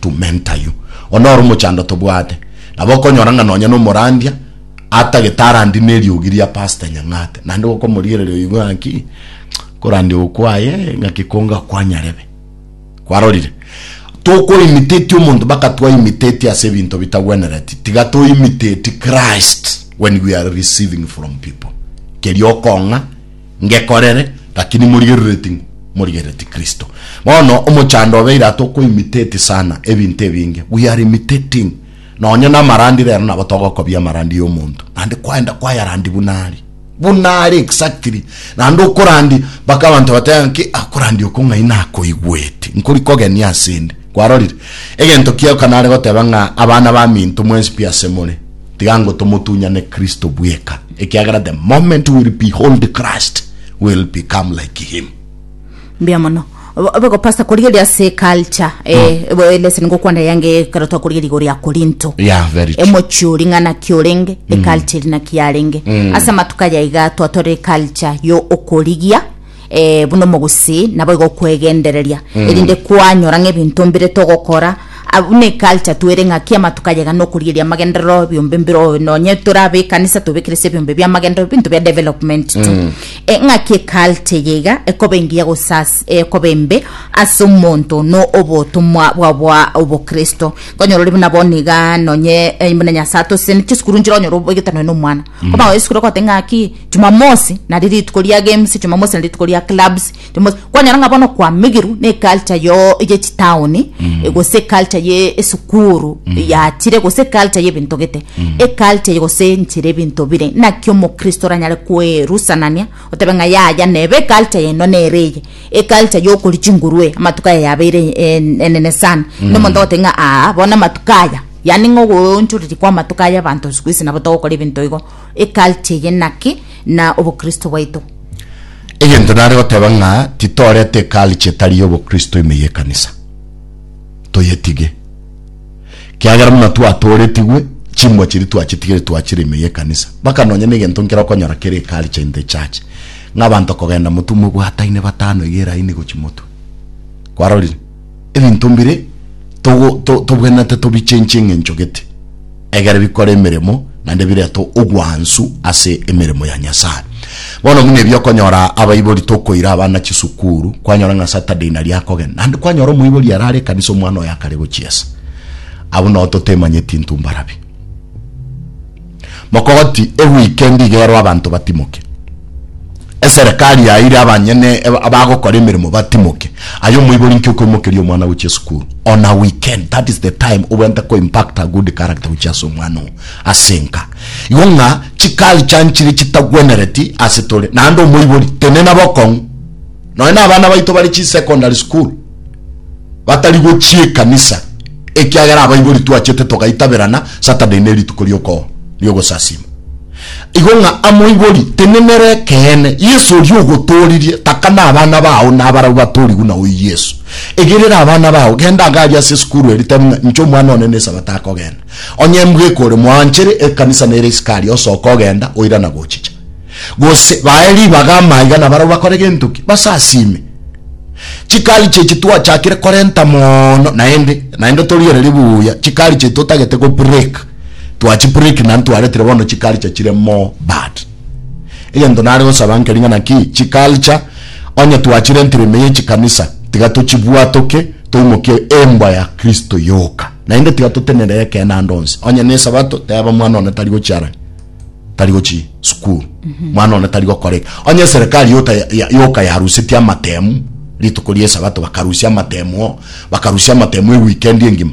to mentor you. Oyo noro omochando tobwate. Nabo okonyora ng'a nonya nomorandia atagete arandi neriogi ria Pastor Nyang'ate. Naende gokomorigereria oigwe ng'a ki, korandia ogo kwaye ng'aki konga kwanyarebe. Kwarorire? Toko imitate omonto baka twa imitate ase ebinto bitagwenereti. Tiga to imitate Christ when we are receiving from people. Keria okong'a ngekorere, lakini morigerereti ng'o? Morigerereti Kristo. Bono omochando obeire aa tokoimiteti sana ebinto ebinge, we are imitating nonye namarandi rero nabo togokobia amarandi ya omonto naende kwaenda kwayarandi buna are buna are exactly naende okorandi mpaka abanto bateba ng'aki akorandi oko ng'ai nakoigweti nkori kogeni asende kwarorire egento kiago kanare goteba ng'a abana baminto mwensi pi asemore tiga ngo tomotunyane Kristo bweka, ekiagera the moment we'll behold Christ, we'll become like him. Mbuya mono. Obo- Obe go pastor korigeria ase culture eh, ebo eleseni ngokwanda yange ekero twakorigeria igoro ya Korinto. Yeah, very true. emochi ori ng'a naki orenge eculture eri naki yarenge ase amatuko aya iga twatore eculture yo okorigia eh, buna omogusii naboigo okwegendereria erinde kwanyora ng'a ebinto mbire togokora Ah, buna eculture twere ng'a kiama tukayega nokorieria amagenderero ebiombe mbire oyo nonye tore abe ekanisa tobekerese ebiombe bia amagenderero binto bia development tu Eh, ng'a ki eculture eye iga ekoba engiya gosas eh, ekoba embe ase omonto no obotomwa bwa bwa obokristo konyora ore buna bono iga nonye eh, buna nyasae atosesenete chisukuru nchire onyore oboigete nonye na omwana oba esukuru ogote ng'a ki Jumamosi nari rituko ria games, Jumamosi nari rituko ria clubs, Jumamosi kwanyora ng'a bono kwamigirwe ne culture yo ye chitaoni e gose culture ye esukuru yachire gose culture ye binto gete. E culture ye gose nchire ebinto bire naki omokristo oranyare kwerusanania otebe ng'a yaya nebe e culture yaino nere eye. E culture yo okori chinguru e amatuko aya yabeire e- en- enene sana. Na omonto ogoteba ng'a aa bono amatuko aya yaani ng'a ogoonchoreria kwa amatuko aya abanto siku hizi nabo togokora ebinto igo Eculty eye naki, na obokristo bwaito? Egento nare goteba ng'a titorete eculty etari y'obokristo ime y'ekanisa. Toyetige. Kiagera buna twatooretigwe, chimbwa chiria twachitigire twachire ime y'ekanisa. Baka nonya negento nkere okonyora kere eculture in the church. Ng'a abanto kogenda motwe mobwataine batano iga eraini gochi motwe. Kwarorire? ebinto mbire togo- to- tobwenerete tobichenchie eng'encho gete, egere bikore emeremo naende birete ogwansu ase emeremo ya Nyasae. Bono buna ebi okonyora abaibori tokoira abana chisukuru, kwanyora ng'a Saturday nari akogenda, naende kwanyora omoibori ere are ekanisa omwana oye akare gochiesa. Abwo nao totemanyeti intwe mbarabi. Mogoti eweekend iga ero abanto batimoke. Eserekari yaeire abanyene abagokora emeremo batimoke. Aye omoibori inki okoimokeria omwana gochia esukuru on a weekend? That is the time obwenerete ko impact a good character gochia ase omwana oo ase enka. Igo ng'a chiculture nchire chitagwenereti ase tore. Naende omoibori tenena bokong'u. Nonya na abana baito bare chisecondary school. batari gochia ekanisa, ekiagera abaibori twachete togaitaberana Saturday ne rituko ri'okooro ri'ogosasiima. Igo ng'a amoibori tenenera ekeene, Yeso oria ogotooririe, taka nabana bao na abarabwo batorigwe na oyio Yeso. Egerera abana bao, genda iga aria ase esukuru eria, tebia ng'a, Inche Omwana one n'Esabato akogenda. Onye mbweka ore moanchere, ekanisa nere isiko aria, osoka ogenda, oirana gochicha. gose bae ribaga amaiga nabarabwo bakore gento ki? Basasime. Chikari chi'echi twachakire korenta mono naende naende torigererie buya chikari chi'echi totagete go break twachi break naende twaretire bono chikari cha chire more bad egento nare gosaba nkeri ng'a naki chiculture onye twachirentire ime ye chikanisa tiga tochibwatoke toimokie embwa ya kristo yoka naende tiga totenere ekeene ande onsi onye ne esabato teba mwana one tari gochiara tari gochi sukuru mwana one tari gokora eke onye eserekari yota ya- ya- yoka yarusetie amatemu rituko ria esabato bakarusia amatemu oo, bakarusia amatemu eweekend engima